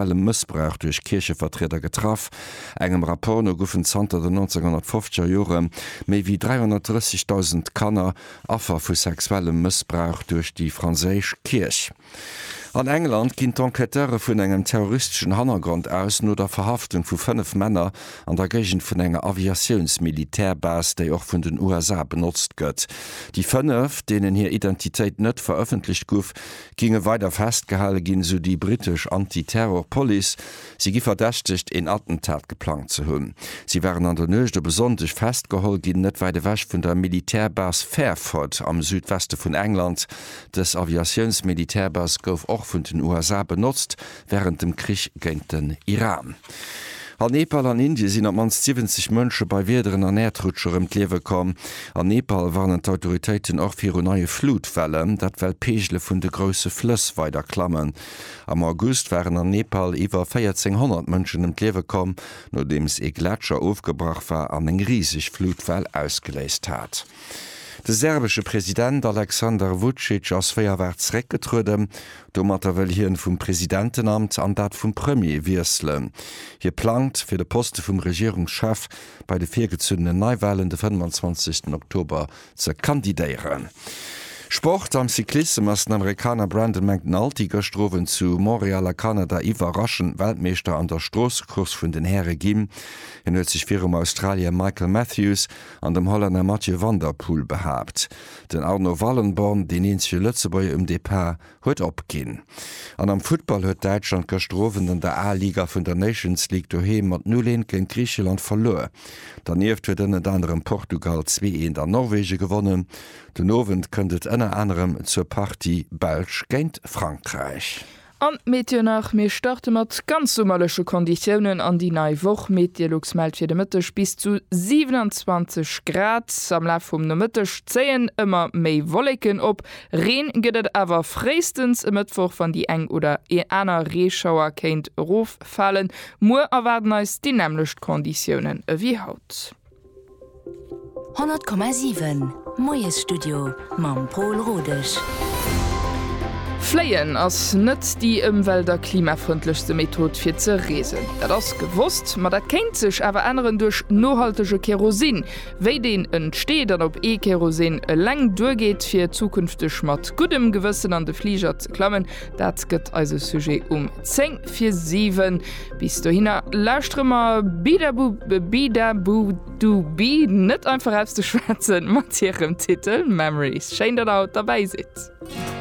sexuellem Mëssbrauch duerch Kierchevertrieder getraff. Engem Rapport no goufen zanter den 1950er Jore méi wéi 330.000 Kanner Affer vu sexuellem Mëssbrauch duerch déi franséisch Kierch. An England ginn d'Enquêteure vun engem terroristeschen Hannergrond aus, no der Verhaftung vu fënnef Männer an der Géigend vun enger Aviatiouns-Militärbase, déi och vun den USA benotzt gëtt. Déi fënnef, deenen hir Identitéit net verëffentlecht guff, Géinge weider festgehale ginn, esou déi brittesch Anti-Terror Police. Si gi verdächtegt, een Attentat geplangt ze hunn. Si waren an der Nuecht op e Sonndeg festgeholl ginn, net wäit ewech vun der Militärbase Fairford am Südweste vun England. Dës Aviatiouns-Militärbase gouf och vun den USA benotzt, wärend dem Krich géint den Iran. A Nepal an Indien sinn op d'mannst 70 Mënsche bei Wiederen an Äerdrutscher ëm d'Liewe komm. An Nepal warnen d'Autoritéiten och viru neie Flutwellen, dat well d'Peegele vun de grousse Flëss weider klammen. Am August waren an Nepal iwwer 1400 Mënschen ëm d'Liewe komm, nodeems ee Gletscher ofgebrach war an eng riseg Flutwell ausgeléist hat. De serbesche President Aleksander Vucic ass wéi erwaart zeréckgetrueden. Domatter wëll hien vum Presidentenamt an dat vum Premier wiesselen. Hie plangt, fir de Poste vum Regierungschef bei de virgezunnenen Neiwahlen de 25 Oktober ze kandidéieren. Sport, Am Cyclissem ass den Amerikaner Brandon McNulty gëschter Owend zu Montreal a Kanada iwwerraschend Weltmeeschter an der Stroossecourse vun den Häre ginn. Hien huet sech virum Australier Michael Matthews an dem Hollänner Mathieu van der Poel behaapt. Den Arno Wallenborn, deen eenzege Lëtzebuerger um Depart, huet opginn. An am Futtball huet Däitschland gëschter Owend an der A-Liga vun der Nations League doheem mat 0, 1 géint Griicheland verluer. Dernieft huet ënnert anerem Portugal 2, 1 an Norwege gewonnen. Den Owend kënnt et ënner anerem zur Partie Belsch géint Frankräich. An d'Meet Dir nach, Mir starte mat ganz summerleche Konditiounen an déi nei Woch. Meteolux mellt fir de Mëtteg bis zu 27 Grad. Am Laf vum Nomëtteg zéien ëmmer méi Wolleken op, Reen gëtt et awer fréistens e Mëttwoch, wann déi eng oder ee aner Reeschauer kéint eroffalen. Muer erwaarden eis déi nämmlecht Konditiounen ewéi haut. 100,7 Moiesstudio mam Pol Rodesch. Fléien ass net déi ëmwelt a klimafrëndlechste Method fir ze reesen. Dat ass gewosst. Ma dat kéint sech awer änneren duerch nohaltege Kerosin. Wéi deen entsteet an ob ee Kerosin eleng duergeet fir zukünfteg mat guddem Gewëssen an de Fliger ze klammen, Dat gëtt eise Sujet um 10 fir 7. Bis dohinner lauschtere mer Bidabu Bidabu Dubi net einfach aus de Schwätzen mat hirem Titel Memories. Schéin, datt der haut derbäi sidd.